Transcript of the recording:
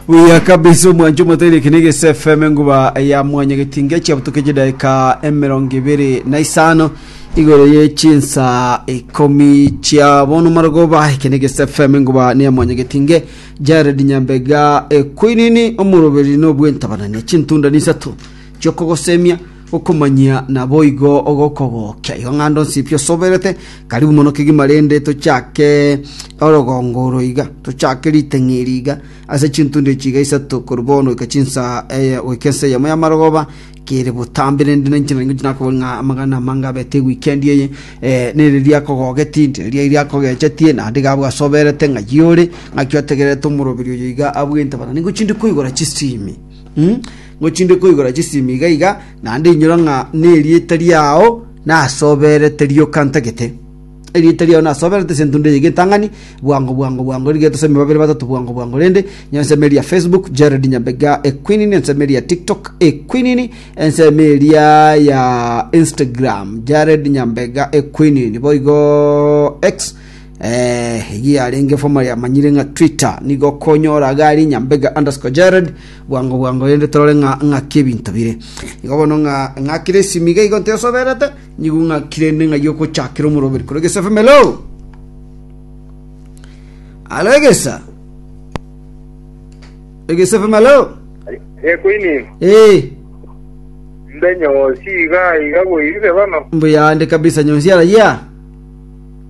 buya kabisa omwancho omotari ekine gese fm enguba ya mwanya getinga chiabutuka chidaika emerongo ibere na isano igoro ye chinsa ikomi chia bono marogoba ekine gese fm enguba ne ya mwanya getinge jared nyambega ekwinini omoroberi nobwentabanani chintunda nisato chiokogosemia Okomanyia naboigo ogokogokia. Igo ng'ando nsi pi osoberete. Karibu mono kegima rende tochake orogongo oro iga. Tochake ritang'ia eri iga. Ase chintundo echi iga isato korwa bono goika chinsa eye goika ensa eyemo y'amarogoba kere botambe rende ninche nari ngochia nakoboria ng'a amagana amange abete eweekend eye eh, nere riakogogetie nti riria riakogechetie naende iga abwo asoberete ng'ai ore ng'aki otegererete omoroberi oyo iga abwente bana ningochia ndi koigora chisimi Mm, ngochinde koigora chisimi iga iga, naende inyora ng'a nerieta riao nasoberete rioka ntagete. Erieta riao nasoberete ase entundo eye getang'ani, bwango bwango bwango rigete ase babere batato bwango bwango rende, nyenseme eria Facebook, Jared Nyambega Equinini, enseme eria TikTok Equinini, enseme eria ya Instagram, Jared Nyambega Equinini, boigo X Eeh eyio yarenge formerly amanyire ng'a Twitter, nigo okonyora iga aria Nyambega underscore Jared bwango bwango rende torore ng'a ng'aki ebinto bire. Igo bono ng'a ng'akire esimi iga igo ntesoberete, nigo ng'akire ende ng'a yogochakera omoroberi korwa Egesa FM hello. Hello Egesa. Egesa FM hello. Ekoini, Eh, mbe nyosi iga iga boirire bono. mbuya ande kabisa nyonsi arayia.